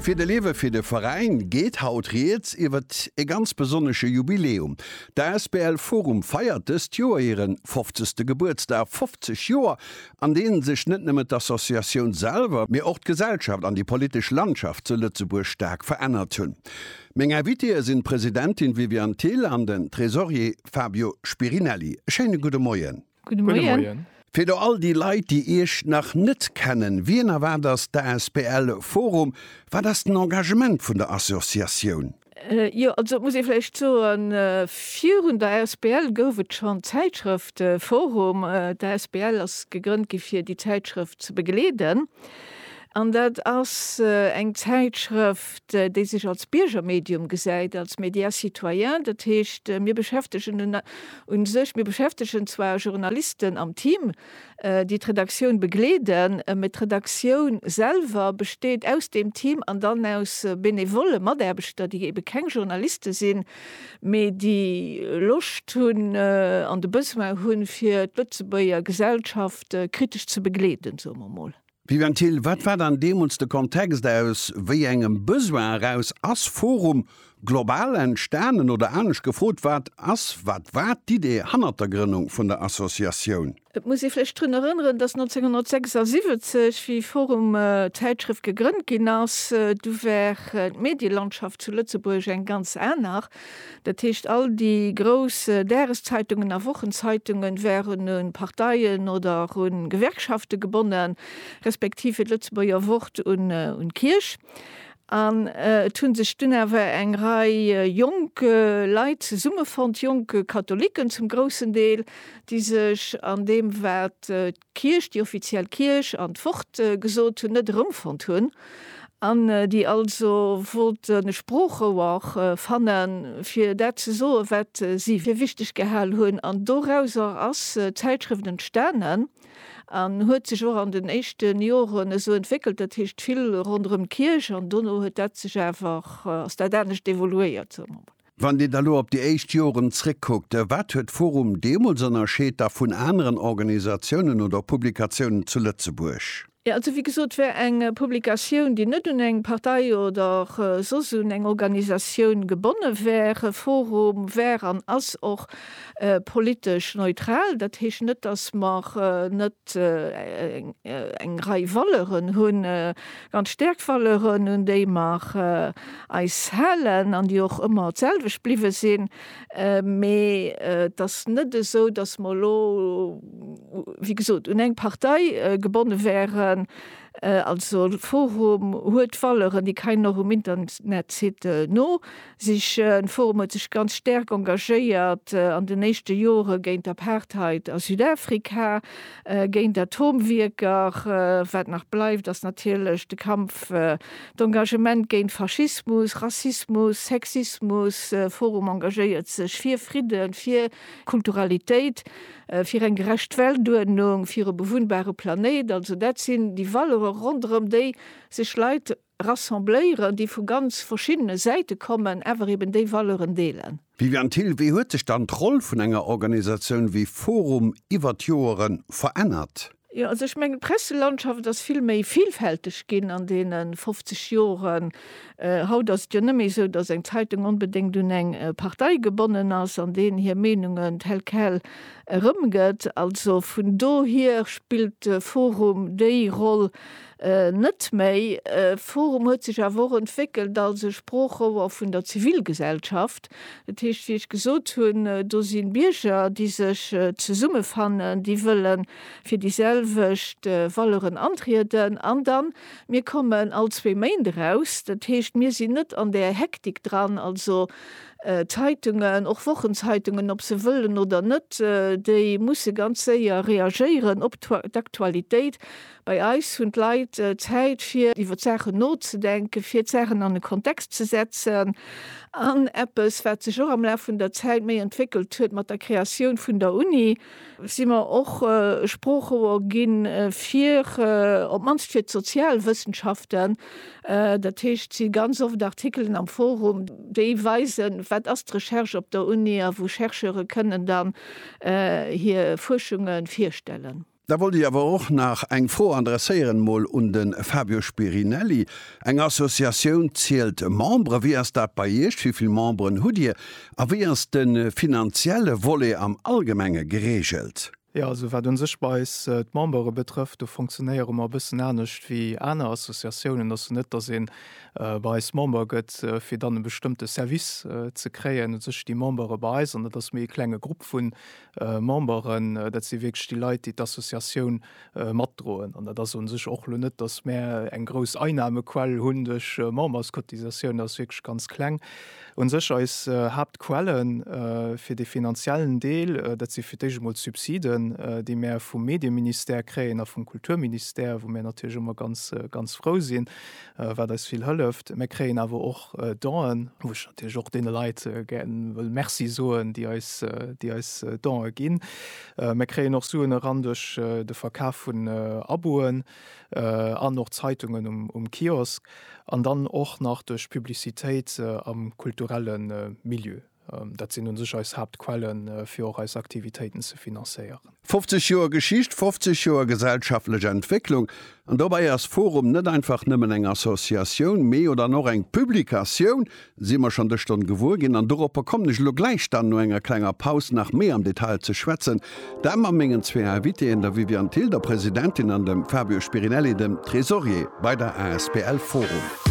Fir de Lewe fir de Veräin geet haut rieds iwwert e ganz besonnesche Jubiläum. D'asbl Forum feiert dëst Joer hiren 50. Gebuertsdag, 50 Joer an deenen sech net nëmmen d'Associatioun selwer, mee och d'Gesellschaft an déi politesch Landschaft zu Lëtzebuerg staark verännert hunn. Meng Invitéë sinn d'Presidentin Viviane Thill an den Tresorier Fabio Spirinelli. E schéine gudde Moien. Gudde Moien. Fir do all déi Leit, déi Iech nach net kennen, Wien a wat ass d'asbl Forum? Wat ass den Engagement vun der Associatioun? Jo, also et muss ee vläicht soen, virun der asbl gouf et schonn d'Zäitschrëft Forum. D'asbl ass gegrënnt gi fir déi Zäitschrëft ze begleeden. An dat ass eng Zäitschrëft, déi sech als Biergermedium gesäit, als média citoyen. Dat heescht, mir beschäftegen un u sech, mir beschäftegen zwar Journalisten am Team, déi d'Redaktioun begleeden, mä d'Redaktioun selwer besteet aus deem Team an dann aus benevolle Mataarbechter, déi ebe keng Journaliste sinn, mä déi Loscht hunn an de Besoin hunn, fir d'Lëtzebuerger Gesellschaft kritesch ze begleeden, soe mer emol. Viviane Thill, Wat war dann deemools de Kontext, aus wéi engem Besoin eraus ass Forum Global entstanen? Oder anescht gefrot, Wat ass, wat war d'Idee hannert der Grënnung vun der Associatioun? Et muss ee vläicht drun erënneren, datt 1976, wéi Forum d'Zäitschrëft gegrënnt ginn ass, du war d'Medielandschaft zu Lëtzebuerg eng ganz aner. Dat heescht, all déi grouss Dageszeitungen a Wochenzeitungen wären un Parteien oder un Gewerkschaften gebonnen, respektiv fir d'Lëtzebuerger Wort un d'Kierch. An et hunn sech dunn awer eng Rei jonk Leit zesummefonnt, jonk Katholiken zum groussen Deel, déi sech an deem wat Kierch, déi offiziell Kierch an d'Wort gesot hunn, net erëmfonnt hunn, an déi also wollten e Sproochrouer fanne fir dat ze soen, wat si fir wichteg gehal hunn. An dorauser ass d'Zäitschrëft entstanen an huet sech och an den éischte Joren esou entwéckelt, dat heescht vill ronderëm d'Kierch, an dono huet dat sech awer, ass dat anescht evoluéiert, soe mer mol. Wann Dir da lo op déi éischt Joren zréckkuckt, wat huet d'forum deemools ënnerscheet da vun aneren Organisatiounen oder Publikatiounen zu Lëtzebuerg? Jo, also wéi gesot, war eng Publikatioun, déi net un eng Partei oder soss un eng Organisatioun gebonne war. forum war an ass och politesch neutral. Dat heescht net, dass mer net eng Rei Valeuren hunn, An d'Stäerkvaleuren, un déi mer eis halen an déi och ëmmer d'selwecht bliwwe sinn, mee et ass net esou, dass mer elo, wéi gesot, un eng Partei gebonne wären. Also forum huet Valeuren, déi keinen och um Internetsite no. Sich, Den Forum huet sech ganz stäerk engagéiert an den éischte Jore géint d'Apartheid a Südafrika, géint Atomwierker. Wat nach bleift, ass natierlech de Kampf, d'Engagement géint Faschismus, Rassismus, Sexismus. Forum engagéiert sech fir Fridden, fir Kulturalitéit, fir eng gerecht Weltuerdnung, fir e bewunnbare Planéit. Also dat sinn déi Valeuren, ronderëm déi sech Leit Rassembléieren, déi vu ganz verschiddene Säite kommen, awer eben déi Valeuren deelen. Viviane Thill, Wéi huet sech dann d'Roll vun enger Organisatioun wéi forum iwwer d'Joere verännert? Jo, also ech mengen, d'Presselandschaft ass vill méi vilfälteg ginn an deene 50 Joren. Haut ass et jo net méi esou, datt eng Zeitung onbedéngt un eng Partei gebonnen ass an deenen hir Meenungen tel quel erëmgëtt. Also vun dohier spillt de forum déi Roll, Net méi. E Forum huet sech awer och entwéckelt als e Sproochrouer vun der Zivilgesellschaft. Dat heescht, wéi ech gesot hunn, do si Bierger, déi sech zesummefannen, déi wëlle fir déi selwecht Valeuren antrieden. An da mir kommen all zwee Méint eraus. Dat heescht, mir sinn net an där Hektik dran. Also Zeitungen, och Wochenzeitungen, ob se wëllen oder net, déi musse ganz séier reagéieren op d'Aktualitéit. Bei eis hunn d'Leit Zäit fir iwwer d'Saachen nozedenken, fir d'Saachen an e Kontext ze setzen an eppes wat sech och am Laf vun der Zäit méi entwéckelt huet, mat der Kreatioun vun der Uni si mer och Sproochrouer ginn, fir op d'mannst fir d'Sozialwëssenschaften. Dat heescht, si ganz oft Artikelen am Forum, déi weisen, wat ass d'Recherche op der Uni a wou Chercheure kënnen dann hir Fuerschunge virstellen. Da wollt ech awer och nach eng Fro adresséieren, mol un de Fabio Spirinelli. Eng Associatioun zielt Membere. Wéi ass dat bei Iech? Wéi vill Memberen hutt Dir? A wéi ass de finanzielle Volet am Allgemenge gereegelt? Jo, also wat u sech bei eis d'Membere betrëfft, do funktionéiere mer e bëssen anescht wéi aner Associatiounen. Ass jo net, datt ee bei eis Member gëtt, fir dann e bestëmmte Service ze kréien. U sech sti Membere bei eis, an dat ass méi e klenge Grupp vu Memberen, dat si wierklech déi Leit, déi d'Associatioun matdroen. An dat ass u sech och elo net, datt mär eng grouss Einnahmequell hunn duerch Memberscotisatioun, dat ass wierklech ganz kleng. U sech eis Haaptquelle fir dee finanziellen Deel, dat si fir d'éischt emol d'Subsiden, déi mär vum Medieministère kréien a vum Kulturministère, wou mär natierlech ëmmer ganz, ganz frou sinn. wat eis vill hëlleft. Mir kréien awer och Donen, wou ech natierlech och deene Leit gär wëll Merci soen, déi eis, déi eis Donë ginn. Mir kréien och Suen eran duerch de Verkaf vun Aboen an och Zeitungen um Kiosk an dann och nach duerch Publicitéit am kulturelle Milieu. Dat sinn un sech eis Haaptquellen, fir och eis Aktivitéiten ze finanzéieren. 50 Joer Geschicht, 50 Joer gesellschaftlech Entwécklung. An dobäi ass forum net einfach nëmmen eng Associatioun, mee oder an och eng Publikatioun, si mer schonn dës Stonn gewuer ginn. An doropper kommen ech elo gläich dann no enger klenger Paus nach méi am Detail ze schwätzen, dat mat mengen zwee Invitéen, der Viviane Thill, der Presidentin, an dem Fabio Spirinelli, dem Tresorier bei der asbl forum.